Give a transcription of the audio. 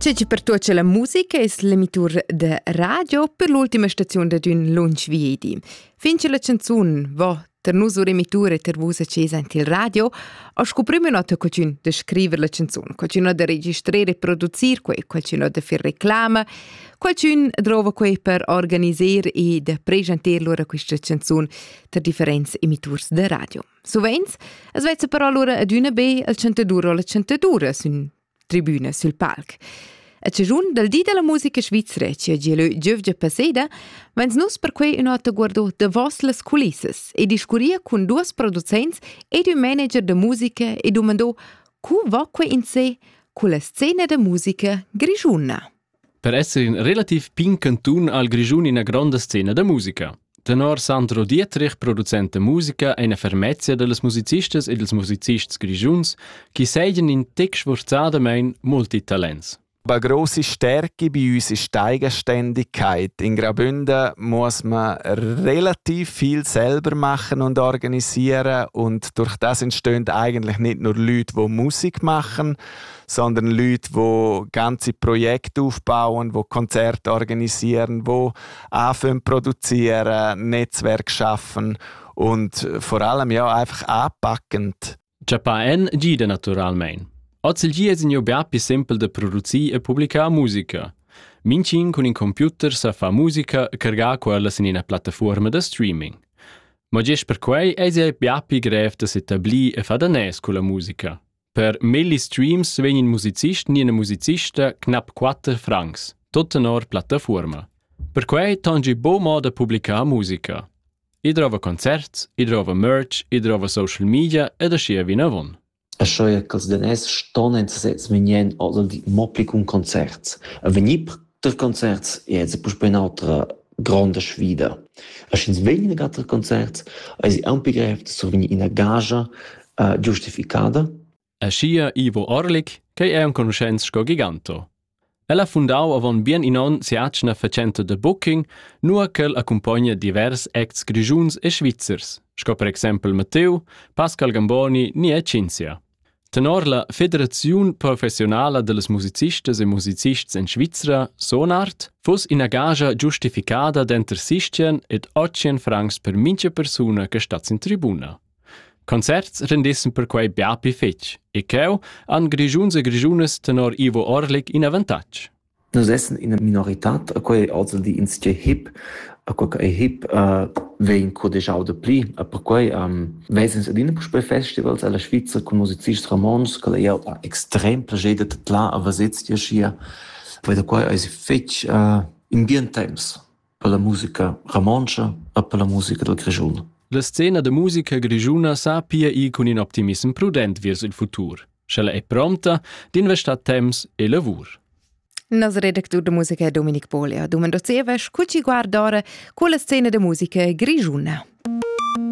Tge che pertuocha la musica es l'emitur da radio per l'ultima staziun dad ün lunch viedi. Fin che la canzun vo ter nus ur emitur e ter vus a ches aint il radio, o sco prüm ün oter cucin da scriver la canzun, cucin da registrer e producir quei, cucin da fer reclama, cucin drova quei per organiser e da pregenter lura quista canzun ter differents emiturs da radio. Suveins as vezza però lura adüna be al chantadur o la chantadura sün tribüna sül palc. A chaschun dal di della musica svizra che ha gieu giövgia passeda, vens nus per quei ün'ota guardo davos las culissas e discurria cun duos producents ed ün manager da musica e dumandò co va quei in se culla scena da musica grischuna. Per esser in relativ pign cantun ha il Grischun ina gronda scena da musica. Tenor Sandro Dietrich, producent da musica, è ina fermezia da las musicistas e dals musicists grischuns chi seigien in tec sforzadamain multitalents. Bei große Stärke bei uns ist die Eigenständigkeit. In Graubünden muss man relativ viel selber machen und organisieren und durch das entstehen eigentlich nicht nur Leute, die Musik machen, sondern Leute, die ganze Projekte aufbauen, die Konzerte organisieren, die anfangen produzieren, Netzwerk schaffen und vor allem ja einfach anpackend. Giappà en gida naturalmein. Oz il gia sin bia più simpel da producir e publicar musica. Mincin cun in computer sa fa musica cargar quella sin ina plattaforma da streaming. Ma gest per quei eis ei bia pli grev da s'etablir e fa danès con la musica. Per melli streams vegn in musicist ni ina musicista knap quatter francs, tut tenor plattafuorma. Perquei tangi bo moda publicar musica. I drova concerts, i drova merch, i drova social media ed aschia vinavon. E sche ch'els daners ston en sesez vegnien oder di mo pli cun concerts. A vegnir Tril concerts è ins puspè in'autra gronda sfida. Er sch'ins vegn in auter concerts, eisi aunc pli grev da survegnir ina gagia uh, giustificada. Aschia Ivo Orlik, che è enconuschents sco Giganto. El ha fundau avon bien in onn sia atgna facenta de booking, nua ch'el accumpogna divers acts grischuns e svizzers, sco per exempel Matteo, Pascal Gamboni ni e Cinzia. Tenor la Federaziun professiunala dallas musicistas e musicists en Svizra, Sonart, fuss ina gagia giustificada denter sistien ed otschien francs per mintga persuna che stat sin tribuna. Concerts rendissen perquei bia pli fetg e cheu han grischuns e grischunas tenor Ivo Orlik in avantatg. Nus essan ina minoritad e quei ei oz il di insatgei hip, e quei ch'ei hip vegn cudegiau dapli. E perquei ves'ins adina puspei festivals ella Svizra cun musicists romontschs ch'el ei jau ha extrem plascher da tadlar a veser ti aschia. Poi da quei eis fetg in bien temps. per la musica romontscha e per la musica dal Grischun. La scena da musica grischuna sa pia ir cun in optimissem prudent vers il futur, sch'ella è prompta d'investar temps e lavur. Nas redactur da musica è Dominik Pole. Domando zieva, cu ci guardare quella scena da musica grischuna.